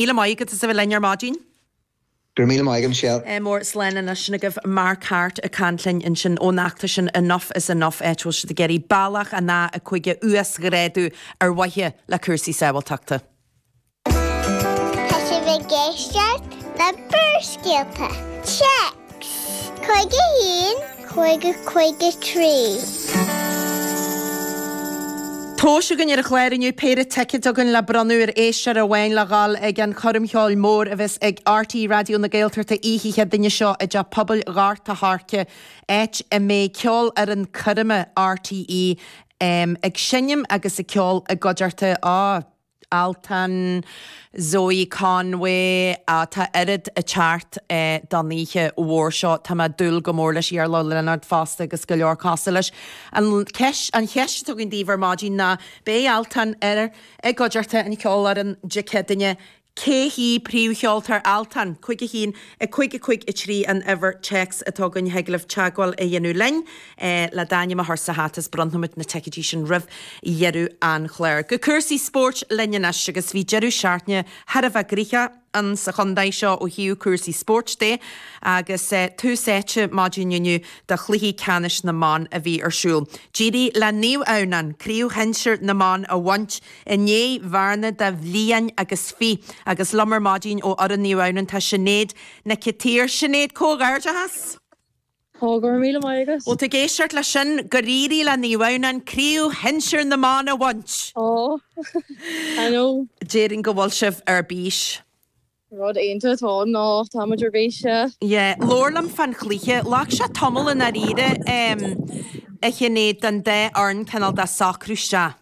Míle maith agat as a bheith linn ar maidin. Go raibh míle maith agat, Michelle. Mór slán ansin agaibh Mark Harte ag caint linn ansin ón fheachtas sin Enough is Enough áit a bhfuil siad ag iarraidh bealach an A5 a uasghrádú ar mhaithe le cúrsaí sábháilteachta. Tá sibh ag éisteacht le Barrscéalta, téacs 51 553. Tomhas againn ar an chlár inniu péire ticeád againn le bronnadh ar éisteoir amháin le dhul ag an choirm cheoil mhór a bheas ag RTÉ Raidió na Gaeltachta oíche Chéadaoine seo i dTeach Pobail Ghort a' Choirce áit a mbeidh Ceolfhoireann Coirme RTÉ ag seinm agus ag ceol i gcuideachta a Altan, Zoë Conway, ah tá oiread ag teacht don oíche mhór seo. Tá mé ag dúil go mór leis Iarla Ó Lionáird fosta agus go leor cosúil leis. An cheist, an cheist atá againn daoibh ar maidin ná beidh Altan ar i gcuideachta an cheolfhoireann Dé Céadaoine. Cé hí príomhcheoltóir Altan? Cúig a haon, a cúig, a cúig a trí an uimhir téacs atá againn thig libh teagmháil a dhéanamh linn. é le d'ainm a chur sa hata is bronnfaidh muid na ticéidí sin roimh dheireadh an chláir. Go cúrsaí spóirt linn anois agus bhí deireadh seachtaine thar a bheith gnoitheach ann sa chontae seo ó thaobh cúrsaí spóirt de agus tús áite maidin inniu do chluichí ceannais na mban a bhí ar siúl. D'éirigh le Naomh Adhamhnáin craobh shinsir na mban a bhaint i ndiaidh bhearna de bhliain agus fiche agus liom ar maidin ó fhoireann Naomh Adhamhnáin tá Sinéad Nic an tSaoir. Sinéad, comhghairdeachas! Tá, go raibh míle maith agat. Bhfuil tú ag éisteacht leis sin? Gur éirigh le Naomh Adhamhnáin craobh shinsir na mban a bhaint! Aww. I know. Déarfainn go bhfuil sibh ar bís. Rud iontach atá ann ná táimid ar bís, yeah. Yeah. Labhair liom fán chluiche. Ghlac sé tamall i ndáiríre, em, a Shinéad, don dá fhoireann cineál de socrú isteach.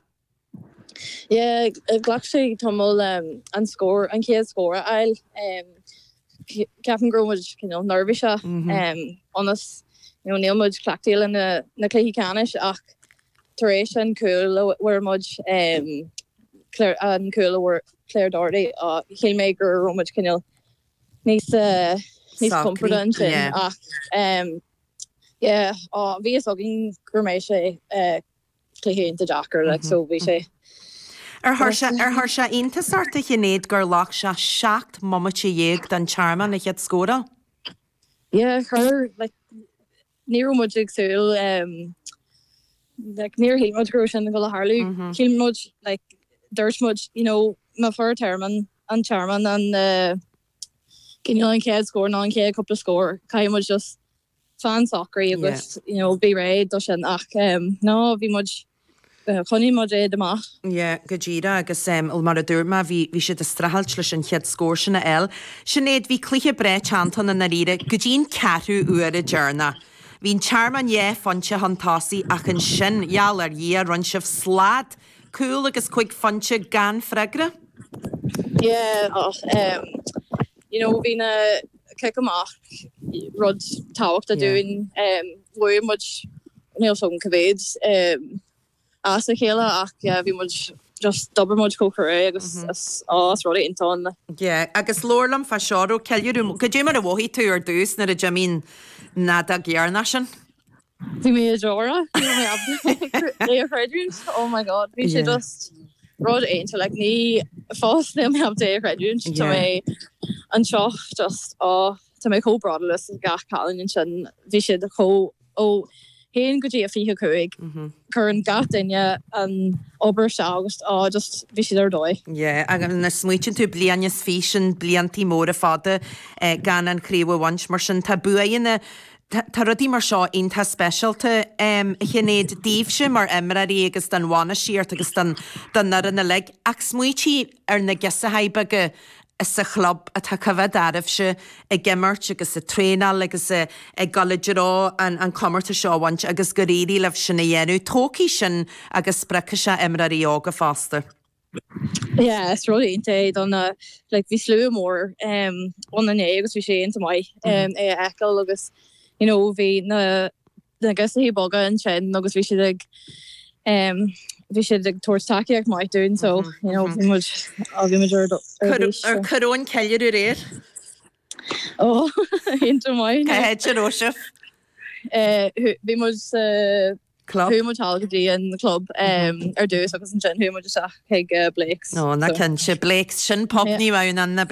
Yeah, ghlac sé tamall an scór, an chéad scór a fháil. Ceapaim go raibh muid cineál neirbhíseach ionas you know níl muid cleachtaithe le na cluichí ceannais ach tar éis an chúil a fuair muid, an cúl a fuair Claire Doherty, shíl mé go raibh muid cineál níos compordaí ansin ach yeah, bhí fhios againn go mbeadh sé. Cluiche iontach deacair like so bhí sé. Ar chuir sé iontas ort a Shinéad gur ghlac sé seacht mbomaite déag don Tearmann a chéad scór a fháil? Yeah chuir like ní raibh muid ag súil like níor shíl muid go raibh sin ag gabháil a tharlú. Shíl muid like dúirt muid you know má fuair Tearmann an Tearmann an eh cineál an chéad scór nó an chéad cúpla scór caithfidh muid just fan socair agus you know bí réidh dó sin ach em ná bhí muid choinnigh muid iad amach. Yeah go díreach agus em well mar a dúirt mé bhí bhí siad ag streachailt leis an chéad scór sin a fháil. Sinéad bhí cluiche breá teannta i ndáiríre go dtí an ceathrú uaire deireanach. Bhí an Tearmann dhá phointe chun tosaigh ach ansin gheall ar Dhia rinne sibh slad, cúl agus cúig phointe gan freagra. Yeah ach em you know bhí na cic amach rud tábhachtach dúinn bhuaigh muid níl a fhios agam cá mhéad as a chéile ach yeah bhí muid just d'obair muid chomh crua agus is á rud iontach ann. Yeah agus labhair liom fá seo roimh ceiliúradh goidé mar a mhothaigh tú ar dtús nuair a d'imigh an fheadóg dheireanach sin. Bhí mé i ndeora. Níl mé ábalta é a chreidiúint. Oh my God. Bhí sé Yeah. just rud iontach like ní fós níl mé ábalta é a chreidiúint. Tá mé Yeah. anseo just á Tá mé chomh bródúil as gach cailín ansin. Bhí siad a chomh ó haon go dtí a 25. Mhm. Cuireann gach duine an obair isteach agus á just bhí siad ar dóigh. Yeah agus nuair a smaoitíonn tú bliain is fiche sin blianta móra fada eh gan an chraobh a bhaint mar sin tá buaidheanna Tá, tá rudaí mar seo iontach speisialta, a Shinéad, daoibhse mar imreoirí agus don bhainistíocht agus don, don fhoireann uilig. Ach smaoitigh ar na girseachaí beaga sa chlub atá ag coimhéad oraibhse ag imirt agus ag traenáil agus ag dul i dtreo an, an comórtas seo a bhaint agus gur éirigh libh sin a dhéanamh. Tógfaidh sin agus spreagfaidh sé imreoirí óga fosta. Yeah is rud iontach é don eh like bhí slua mór em ann inné agus bhí sé iontach maith em é a fheiceáil agus you know bhí na na girseachaí beaga ansin agus bhí siad ag em bhí siad ag tabhairt tacaíocht maith dúinn so you know bhí muid á bhí muid ar do- ar Cur bís, ar so. cá raibh an ceiliúradh aréir. Ó iontach maith. Cá háit a raibh sibh. Eh, hu- Bhí muid sa club. Chuaigh muid thall go dtí an club ar dtús agus ansin chuaigh muid isteach chuig Blake's. Ó, na cinnte, Blake's, sin pub Naomh Adhamhnáin.